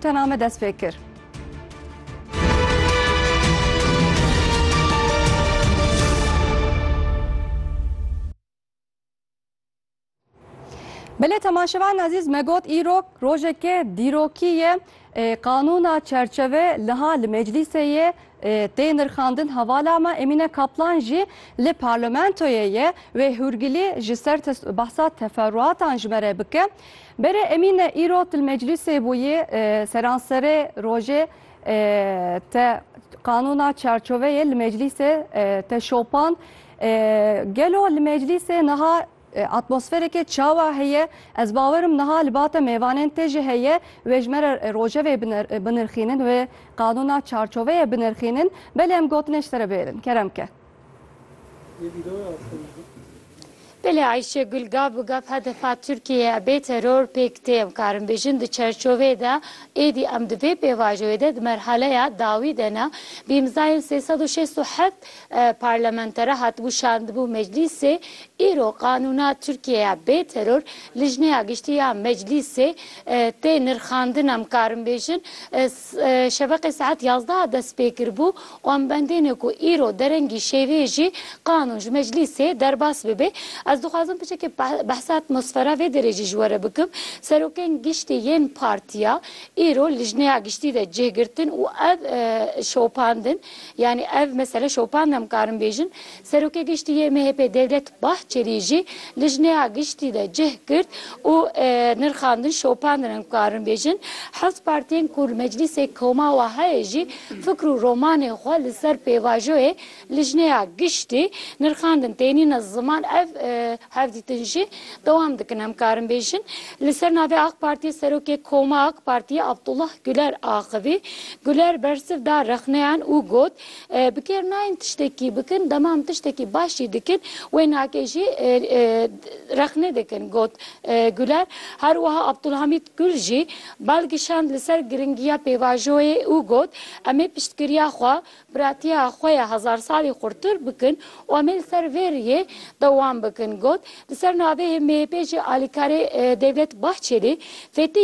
Te name dest pê kir. Belê temaşevan azîz me got îrok rojeke dîrokî ye qanûna çerçeve liha li meclîsê ye tê nirxandin hevala me Emîne Kaplan jî li parlamentoyê ye wê hûrgilî ji ser behsa teferruatan ji me re bike. Berê Emîne îro til meclîsê bûyî, seranserê rojê te qanûna çarçoveyê li meclîsê te şopand. Gelo li meclîsê niha atmosferekê çawa heye? Ez bawer im niha li ba te mêvanên te jî heye wê ji me re rojevê binirxînin, wê qanûna çarçoveyê binirxînin. Belê em gotinê ji te re bêrin. Kerem ke. Belê Ayşe Gul gaf bi gaf hedefa Tirkiyeyê bê teror pêk tê. Em karin bêjin di çerçoveyê de êdî em di vê pêvajoyê de di merhaleya dawî de ne. Bi îmzayên sê sed û şêst û heft parlamentere hatibû şandibû meclîsê îro qanûna Tirkiyeyê bê teror Lijneya Giştî ya Meclîsê tê nirxandin. Em karin bêjin Şeveqê saet yazdeh dest pê kir bû û em bendêne ku îro derengî şêvê jî qanûn ji meclîsê derbas bibe. Ez dixwazim piçekê behsa atmosfera vê derê jî ji we re bikim. Serokên giştî yên partiya îro lijneya giştî de cih girtin û ev şopandin yanî ev mesele şopand em karin bêjin. Serokê Giştî yê MHP'ê Devlet Bahçelî jî lijneya giştî de cih girt û nirxandin şopandin em karin bêjin heft partiyên ku li Meclîsê Koma we heye jî fikr û romanên xwe li ser pêvajoyê lijneya giştî nirxandin tênîne ziman ev hevdîtin jî dewam dikin em karin bêjin li ser navê Ak Partiyê Serokê Koma Ak Partiyê Abdullah Guler axivî Guler bersiv da rexneyan û got Bi kêr nayên tiştekî bikin, dema em tiştekî baş jî dikin wênakê jî rexne dikin got Guler. Her wiha Abdulhamîd Gul jî bal kişand li ser giringiya pêvajoyê û got, Em ê piştgiriya xwe, piratiya xwe ya hezarsalî xurtir bikin û em ê li ser vê rihê dewam bikin got, Li ser navê MHP'ê jî alîkarê Devlet Bahçelî, Fetî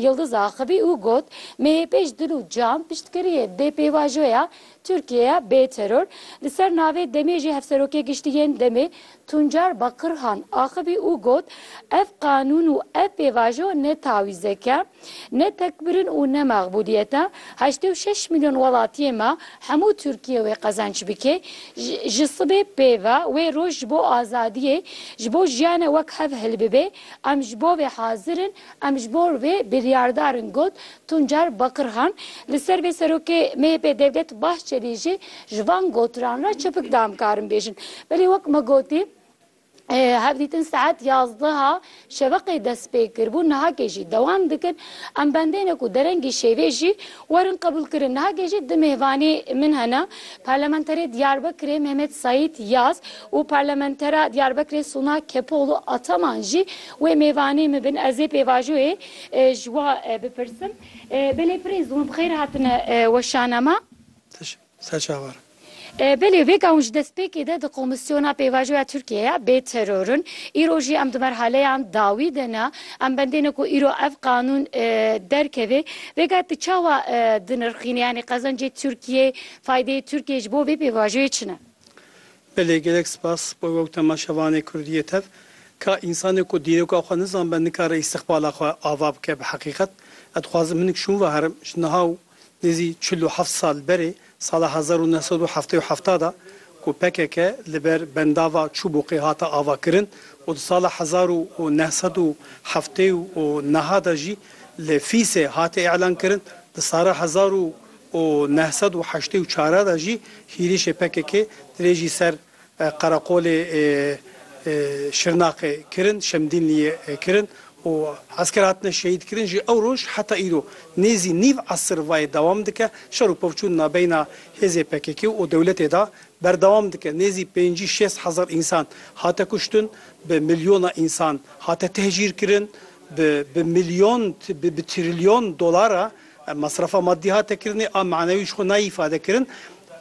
Yildiz axivî û got, MHP'ê ji dil û can piştgiriyê dê pêvajoya Tirkiyeyê bê teror. Li ser navê DEM'ê jî Hevserokê Giştî yên DEM'ê Tuncar Bakirhan axivî û got, Ev qanûn û ev pêvajo ne tawîzek e, Ne tekbirin û ne mexbûdiyete heştê û şeş milyon welatiyê me hemû Tirkiyê wê qezenç bike ji sibê pê ve wê roj ji bo azadiyê ji bo jiyanê wek hev hilbibe em ji bo vê hazir in em ji bo vê biryardar in got Tuncer Bakirhan li ser vê serokê MHP'ê Devlet Bahçelî jî ji van gotiran re çepik da em karin bêjin belê wek me gotî Hevdîtin saet yazdeha şeveqê dest pê kir bû nihakê jî dewam dikin. Em bendêne ku derengî şêvê jî werin qebûl kirin. Nihakê jî du mêvanê min hene. Parlamenterê Diyarbekirê Mehmet Saîd Yaz û Parlamentera Diyarbekirê Suna Kepoğlu Ataman jî wê mêvanê min bin. Ez ê pêvajoyê ji we bipirsim. Belê pirê zûn bi xêr hatine weşana me. Teşekkür. ser çavar. Belê vê ka hûn ji destpêkê de di Komîsyona Pêvajoya Tirkiyeyê ya bê teror in. Îro jî em di merhaleyan dawî de ne. Em bendêne ku îro ev qanûn derkeve. Vêga tu çawa dinirxînî yanî qezencê Tirkiyeyê, faydeyê Tirkiyeyê ji bo vê pêvajoyê çi ne? Belê gelek spas bo wek temaşevanê kurdî yê tev. Ka însanê ku dîroka xwe nizanbe nikare îstiqbala xwe ava bike bi heqîqet. Ez dixwazim hinik şûn ve herim ji niha û Nêzî çil û heft sal berê, sala hezar û neh sed û heftê û heft de ku pkk li ber bendava Çûbûqê hate avakirin û di sala hezar û neh sed û heftê û neh de jî li Fîsê hate îlankirin, di sara hezar û neh sed û heştê û çar de jî hîrişê pkk dirêjî ser Qereqolê Şirnaqê kirin, Şemdînliyê kirin û esker hatine şehîdkirin jî ew roj heta îro nêzî nîv esir vayê dewam dike. Şer û pevçûn nabeyna hêzê pkk û dewletê de berdewam dike. Nêzî pêncî şêst hezar însan hate kuştin, bi milyona însan hate tehcîrkirin, bi milyon, bi trilyon dolar re Mesrefa maddî hate kirinê a manewî ji xwe nayê îfade kirin.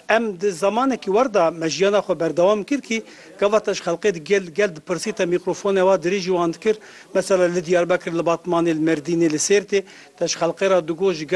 Em di zemanekî wer de me jiyana xwe berdewam kir kî gava te ji xelqê di gel gel dipirsî te mîkrofone wa dirêjî wan dikir. Mesela li Diyarbekir, li Batmanê, li Merdînê, li Sêrtê te ji xelqê re digot ji gel